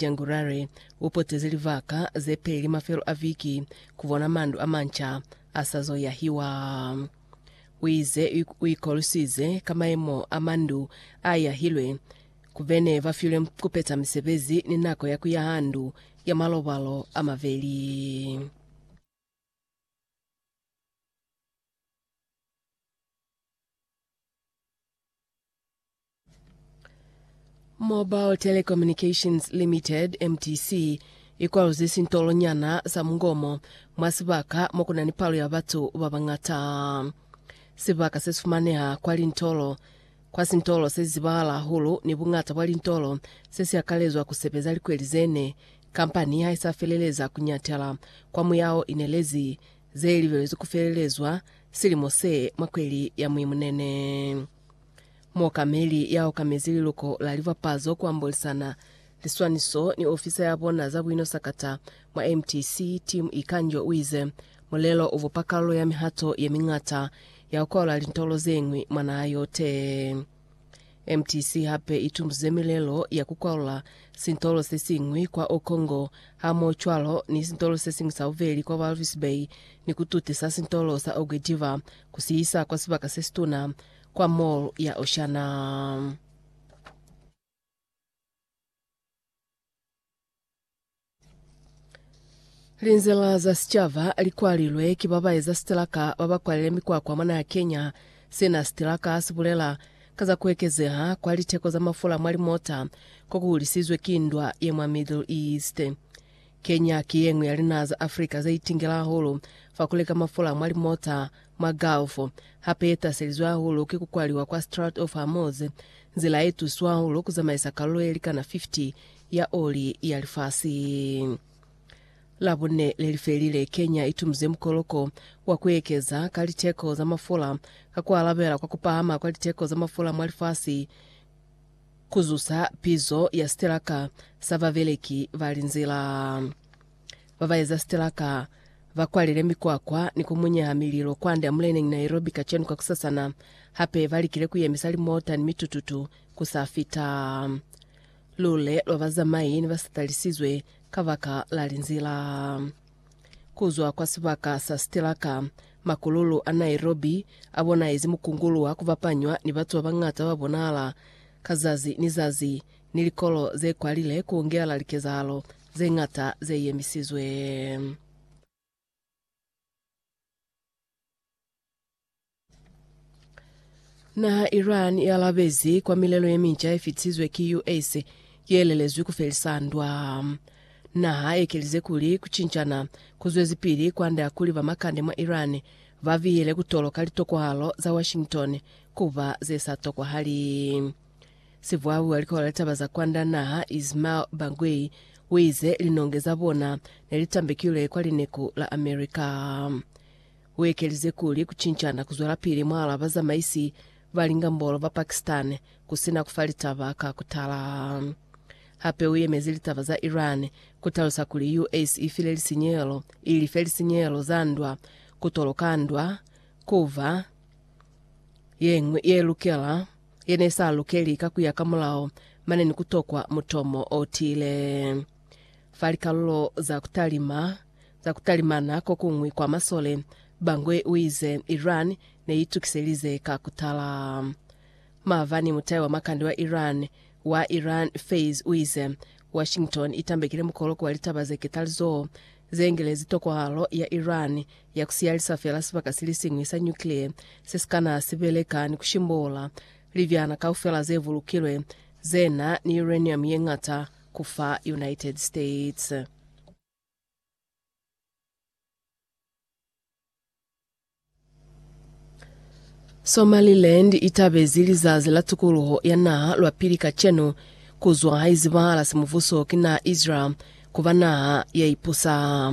January, u poteze livaka ze peli mafelo a viki ku bona mandu a manca a sa zo yahiwa. U ize u ikoluswize ka mayemo a mandu a yahilwe ku be ne ba filwe ku peta misebezi ni nako ya ku yaha ndu ya malobalo a mabeli. Mobile Telecommunications Limited, MTC, ikwaluzi sintolo nyana sa mungomo mwa sibaka mo kuna ni palo ya batu ba bangata. Sibaka se sifumaneha kwa lintolo kwa sintolo se zizibahala hahulu ni bungata bwa lintolo se si akalezwa ku sebeza likweli zene. Kampani ha isa feleleza ku nyatela kwa muyao inelezi ze libelezwi ku felelezwa silimo se mwa kweli ya Muimunene. Muokameli ya okamezi liluko la libapazo ku ambolisana liswaniso ni ofisa ya bona za buino sakata mwa MTC, Tim Ikanjo u ize, Mulelo u bupa kalulo ya mihato ye miñata ya ku kwalula lintolo ze ñwi mwa naha yote. MTC hape i tumbzize milelo ya ku kwalula sintolo se siñwi kwa Okongo hamohocwalo ni sintolo se siñwi sa bubeli kwa Walvis Bay ni ku tutisa sintolo sa Oge Diva ku si isa kwa sibaka se situna, kwa Mall ya Oceana. Linzila za sicaba li kwalilwe ki ba ba eza sitilaka ba ba kwalile mikwakwa mwa naha Kenya. Sina sitilaka si bulela ka za ku ekezeha kwa liteko za mafula mwa limota ko ku hulisizwe ki ndwa ye mwa Middle East. Kenya ki ye ñwi ya linaha za Africa ze itingela hahulu fa ku leka mafula mwa limota mwa Gulf, hape ye taselizwe hahulu ki ku kwaliwa kwa Strait of Hormuz, nzila ye tusiwa hahulu ku zamaisa kalulo ye likana 50 ya oli ya lifasi. Labune lelifelile, Kenya itumize mukoloko wa kuekeza ka liteko za mafula ka kualabela kwa kupahama kwa liteko za mafula mwa lifasi kuzusa pizo ya sitelaka sa babeleki ba linzila. Babaeza sitelaka bakwalile mikwakwa ni kumunyeha mililo kwande amuleneñi Nairobi kacenu kakusasana, hape balikile kuyemisa limota ni mitututu kusafita. Lule lwa bazamai ne ba sa talisizwe kabaka la linzila. Kuzwa kwa sibaka sa sitilaka, makululu a Nairobi a bonaezi mukungulu wa kubapanywa ni batu ba bañata ba bonahala ka zazi ni zazi, ni likolo ze kwalile ku ungela likezahalo ze ñata ze yemisizwe. Naha ya Iran i alabezi kwa milelo ye minca ye fitisizwe ki US ye lelezwi ku felisa ndwa. Naha ye kelize kuli ku cincana ku zwezipili kwande ya kuli ba makande mwa Iran ba bihele ku toloka litokwahalo za Washington ku ba ze sa tokwahali. Sivwabu a likola litaba za kwanda naha Ismail Bagwei uize linonge za bona nelitambekilwe kwa lineku la America. Uekelize kuli kucincana kuzwelapili mwalaa bazamaisi ba lingambolo ba Pakistan kusina kufa litaba ka kutala. Hape uyemezi litaba za Iran kutalusa kuli US ifile lisinyehelo ilife lisinyehelo za ndwa, kutoloka ndwa, kuva yeñwi yelukela ye ne sa lukeli ka ku ya ka mulao, mane ni ku tokwa mutomo o tiile. Fa likalulo za ku talima za ku talimana ko kuñwi kwa masole, Bangui u ize, Iran ne i tukiselize ka ku tala. Maabani mutai wa makande wa Iran, wa Iran Faiz u ize, Washington i tambekile mukoloko wa litaba ze ketalizoho ze ngelezi tokwahalo ya Iran ya ku siyalisa fela sibaka silisiñwi sa nyukliye se si kana si beleka ni ku shimbola libyana kaufela ze bulukilwe ze na ni uranium ye ñata ku fa United States. Somaliland i tabezi Lizazi la Tukuluho ya Naha lwa pili kacenu, ku zwa ha izibahala simubuso ki naha Israel ku ba naha ya ipusa.